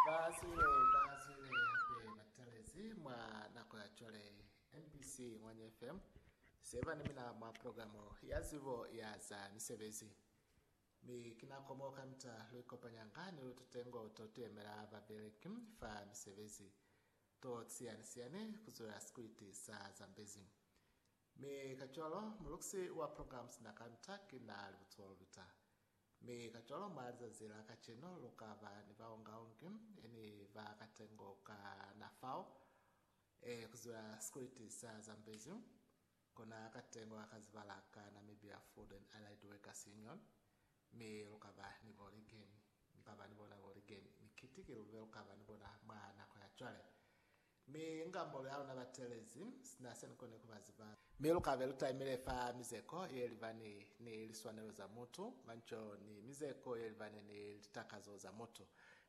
Ba siwe ba siwe hape ba talezi mwa nako ya cwale. MBC Ngwanya FM se ba ni mina mwa programo ya zibo ya za misebezi. Mi ki nako mo kamita lu ikopanyanga ni lututengo to tuyemela babeleki fa misebezi to siyani siyani ku zwela sikwiti sa Zambezi. Mi kacwalo, mulukisi wa programs na ka Ntaki na li butulo luta. Mi kacwalo, mwa lizazi la kacenu, lu ka ba ni baungaungi e ni ba katengo ka na fao, e ku ziba sikuliti sa Zambezi, kona katengo ka kazibala ka Namibia Food and Allied Workers Union, mi lu ka ba ni bo ligeni. Mi ka ba ni bona bo ligeni. Mi kiti ki lube lu ka ba ni bona mwa nako ya cwale. Mi inga molu ya luna batelezi, sina se nikoni kuba ziba. Mi lukabe lutaimile fa mizeko yelibani ni liswanelo za mutu, manco, ni mizeko yelibani ni litakazo za mutu,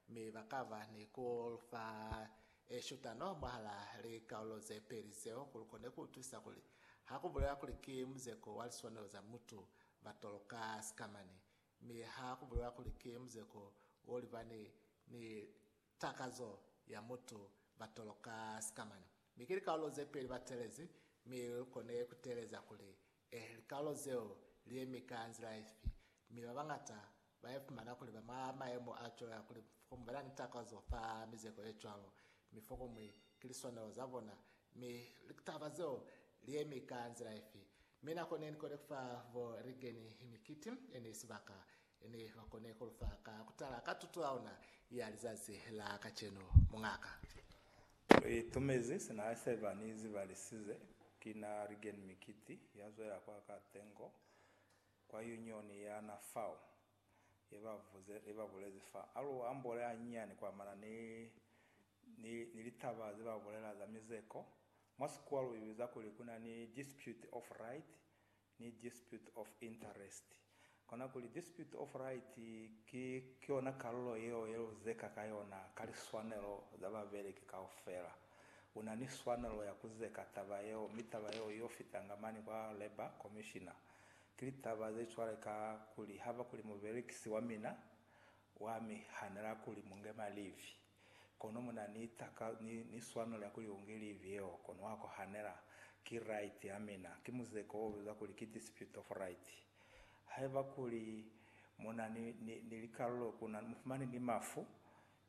mi bakaba ni kulufa eshutano mwahala likaulo zepeli zeo kuli lukone kuutwisa kuli hakubulewa kuli ki muzeko wa liswanelo za mutu batoloka sikamani, mi hakubulewa kuli ki muzeko wolibani ni Takazo ya mutu ba toloka sikamana, mi ki likaulo ze peli ba telezi, mi lu kone ku teeleza kuli, Eh, likaulo zeo li yemi ka nzila ifi? Mi ba bañata ba ifumana kuli ba mwa mayemo a cwalo ya kuli fokuñwi ba na ni takazo fa mizeko ye cwalo, mi fokuñwi ki liswanelo za bona. Mi litaba zeo li yemi ka nzila ifi? Mi nako ne ni kone ku fa bo Reagan mikiti ye ne sibaka, He ne ba kone ku lu fa ka ku tala ka tuto ya ona ya lizazi la kacenu, muñaka. U itumezi sina a sheba ni zibalisize. Ki na Rigen Mikiti ya zwela kwa ka tengo kwa Union ya na fao, ye ba vuze, ye ba bulezi fa. A lu ambole hanyinyani ku amana ni, ni, ni litaba ze ba bulela za mizeko. Mwa Sikuwa lu i biza kuli ku na ni dispute of right, ni dispute of interest. Kona kuli dispute of right ki yona kalulo yeo ye luzeka ka yona ka liswanelo za babeleki kaufela. Una ni swanelo ya kuzeka taba yeo mi taba yeo yo fitanga mane kwa labour commissioner. Ki litaba ze cwale ka kuli haba kuli mubelekisi wa mina wa mi hanela kuli mu nge malivi. Kono mu na ni taka, ni, ni swano lya kuli u ngi livi yeo, kono wa kohanela, Ki right ya mina. Ki muzeko wo bizwa kuli ki dispute of right. Haiba kuli mu na ni, ni, ni likalulo ku na, mu fumani ni mafu,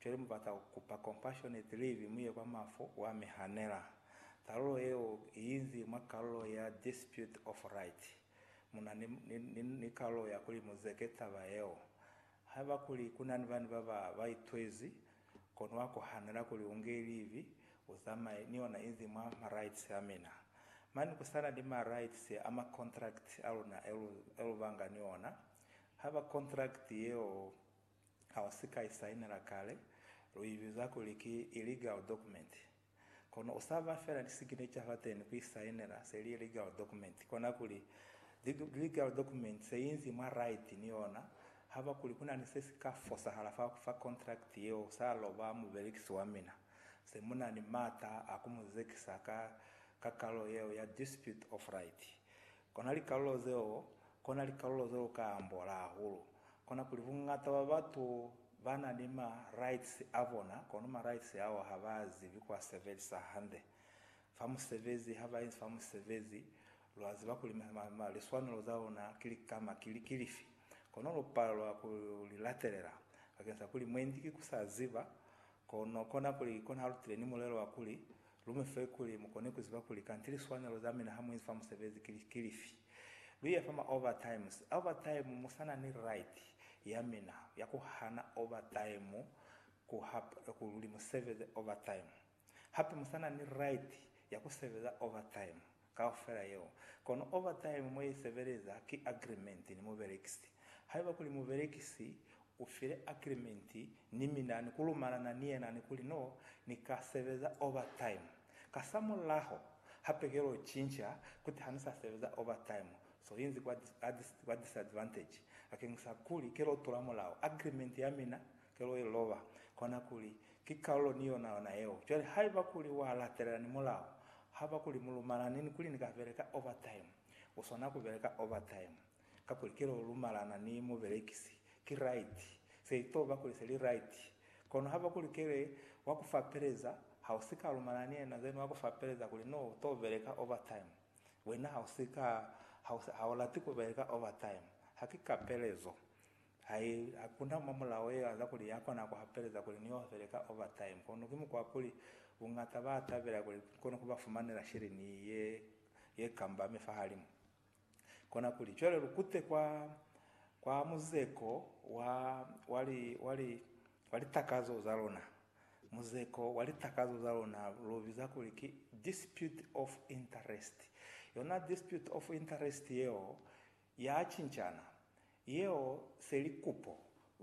cwale mu bata ku kupa compassionate leave mu ye kwa mafu, wa mi hanela. Talulo yeo i inzi mwa kalulo ya dispute of right. Mu na ni, ni, ni, ni kalulo ya kuli mu zeke taba yeo. Haiba kuli ku na ni bani ba ba ba itwezi, kono wa kohanela kuli u nge livi, u zamaye ni ona inzi mwa ma rights a mina. Mane ku sa na ni ma rights a ma contract a luna e lu, e lu banga ni ona. Haiba contract yeo ha u si ka i sainela kale, lu i biza kuli ki illegal document. Kono u sa ba fela lisignecha fateni ku isainela se li ye legal document. Kona kuli, legal document se inzi mwa right ni yona, haba kuli ku na ni se si ka fosahala fa ku fa contract yeo sa lo ba mubelekisi wa mina, se mu na ni m'ata a ku mu zekisa ka kakalo yeo ya dispute of right. Kona likalulo zeo, kona likalulo zeo ka ambola hahulu. Kona kuli bungata bwa batu ba na ni ma rights a bona, kono ma rights ao ha ba zibi ku a sebelisa hande. Fa musebezi, ha ba inzi fa musebezi, lwa ziba kuli liswanelo za luna ki likama ki li, ki lifi. Kono lu palelwa ku li latelela, bakeng sa kuli mwendi ki ku sa ziba. Kono kona kuli, kona halutile ni mulelo wa kuli, lu mi fe kuli mu kone ku ziba kuli kanti liswanelo za mina ha mu inzi fa musebezi ki, ki lifi. Lu iya fa ma overtimes, overtime, mu sa na ni right ya mina ya ku hana overtime ku ha, kuli mu sebeze overtime. Hape mu sa na ni right ya ku sebeza overtime kaufela yeo. Kono overtime mo i sebeleza ki agreement ni mubelekisi. Haiba kuli mubelekisi u file agreement ni mina ni ku lumalana ni yena ni kuli no ni ka sebeza overtime, kasamulaho hape ke lo cinca kuti ha ni sa sebeza overtime, so inzi kwa disadvantage bakeñisa kuli ke lo tula mulao, agreement ya mina Kelo i loba kona kuli ki kalulo ni yona yona yeo. Cwale haiba kuli wa latelela ni mulao, haba kuli mu lumalani ni kuli ni ka beleka overtime, u swana ku beleka overtime. Kakuli kelo u lumalana ni mubelekisi, ki right. Se i to ba kuli se li right. Kono haba kuli kele wa ku fapeleza, ha u si ka lumalana ni yena then wa ku fapeleza kuli no u to beleka overtime. Wena ha u si ka, ha u lati ku beleka overtime. Ha ki kapelezo. Ha i akuna mwa mulao ye aza kuli ya kona ku hapeleza kuli ni ofele ka overtime, kono ki mukwa wa kuli buñata ba tabela kuli ni kone ku ba fumanela sheleni ye ye kambame fahalimu. Kona kuli cwale lu kute kwa, kwa muzeko wa, wa li, wa li, wa litakazo za luna. Muzeko wa litakazo za luna lu biza kuli ki dispute of interest. Yona dispute of interest yeo ya cincana. Yeo se li kupo.